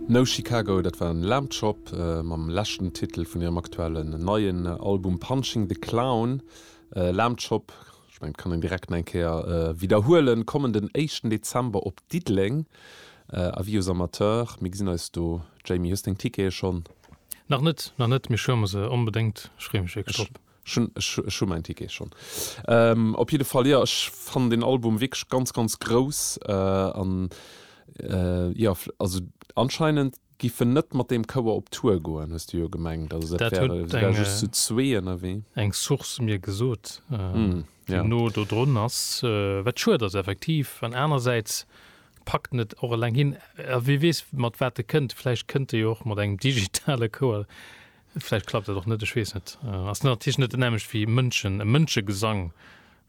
No Chicago, dat war Lamb Chop mam leschten Titel vun hirem aktuellen neien Album Punching the Clown. Lamb Chop, ech mengen et kann een direkt nach eng Kéier widderhuelen, kommen den éischten Dezember op Diddeleng, Avis aux amateurs, mir gesinn eis do. Jamie, hues deng Tickete schonn? Nach net, nach net, mee ech huele mer se onbedéngt, ech freeë mech wierklech drop. Ech hu mäin Ticket schonn. Op jidde Fall, jo, ech fannen den Album wierklech ganz, ganz grouss. An jo, also anscheinend giff en net mat deem Chouer op Tour goen, hues du jo gemengt. Also dat wär, se wäre just zu zwee ënnerwee. Dat huet eng Source mir gesot, déi no do drun ass. Wat schued ass effektiv. An anerersäits packt en et och eleng hin. A wie weess, mat wat e kënnt. Vläicht kënnt e jo och mat engem digitale Chouer. Vläicht klappt dat och net, ech weess net. Ass natierlech net dat nämmlecht wéi Mënschen, e Mënschegesang.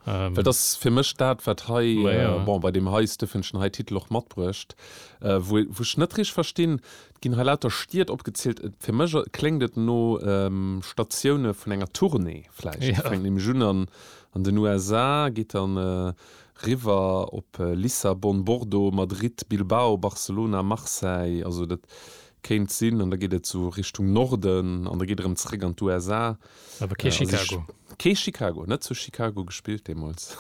Dat ass fir mech dat, wat hei, bon, bei deem hei Stëffenchen hei Titel och matbruecht, wou ech net richteg verstinn. Et ginn hei lauter Stied opgezielt. Fir mech kléngt et no Statioune vun enger Tournée vläicht. Et fänkt nämlech un an den USA, geet dann riwwer op Lissabon, Bordeaux, Madrid, Bilbao, Barcelona, Marseille. Also dat Kéint sinn, an da geet et sou Richtung Norden, an da geet erëm zeréck an d'USA. Awer kee Chicago. Kee Chicago, net zu Chicago gespillt deemools.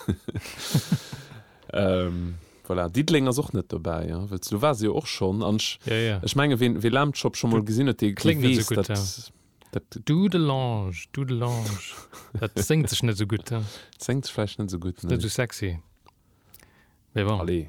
Voilà, Diddeleng ass och net dobäi, jo, wëll s du war se jo och schonn. An ech, ech menge ween wee Lamb Chop scho mol gesinn huet, dee weess, datt. Dudelange, Dudelange, dat séngt sech net esou gutt. Séngt sech vläicht net esou gutt, nee. Net esou sexy, mee bon. Allez.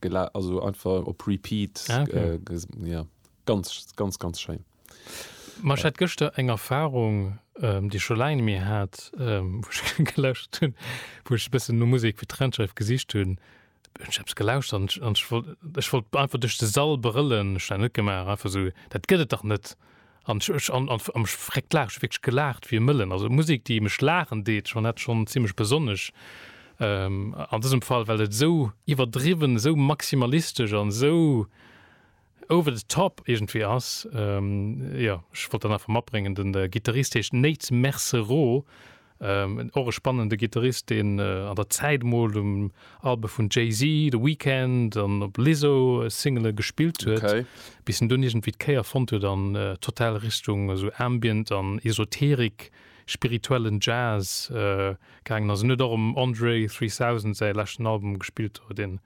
Gela also einfach op Repeat. Ah, okay. äh, ja, ganz, ganz, ganz schéin. Ma ech hat gëschter eng Erfahrung, ähm, déi scho laang mir hat, ähm, wo ech gelöscht hunn, wo ech bëssen no Musik fir d'Trennschreif gesicht hunn. Ech hab's gelauscht an ech wollt einfach duerch de Sall brëllen. Ech hat dat net gemaach, einfach esou, dat gëtt et dach net. An ech, an am Verréckt laachen, ech hu wierklech gelaacht wéi e Mëllen. Also Musek, déi mech laachen deet, schonn dat schonn zimlech besonnesch. An dësem Fall, well et esou iwwerdriwwen, esou maximalistesch an esou over the top iergendwéi ass. Jo, ech wollt dat einfach matbréngen. De Gittarist heescht Nate Mercerot. Och e spannende Gittarist, deen an der Zäit mol um Albe vun Jay-Z, The Weeknd an op Lizzo Singele gespillt huet, bis en dunn iergendwéi d'Kéier fonnt huet an total Richtung esou Ambient an Esoterik, spirituellen Jazz gaangen ass. En huet och um Andre 3000 säi leschten Album gespillt, deen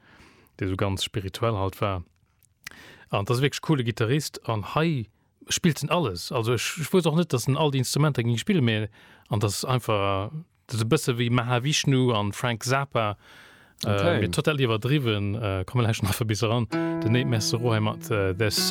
esou ganz spirituell halt war. An et ass wierklech coole Gittarist an hei spillt en alles. Also ech ech wousst och net dass en all déi Instrumenter ging spillen mee an dass es einfach dass e bësse wéi Mahavishnu an Frank Zappa okay. äh, total iwwerdriwwen äh, komme lech nach bis ran den Nate Messero hei mat äh, there's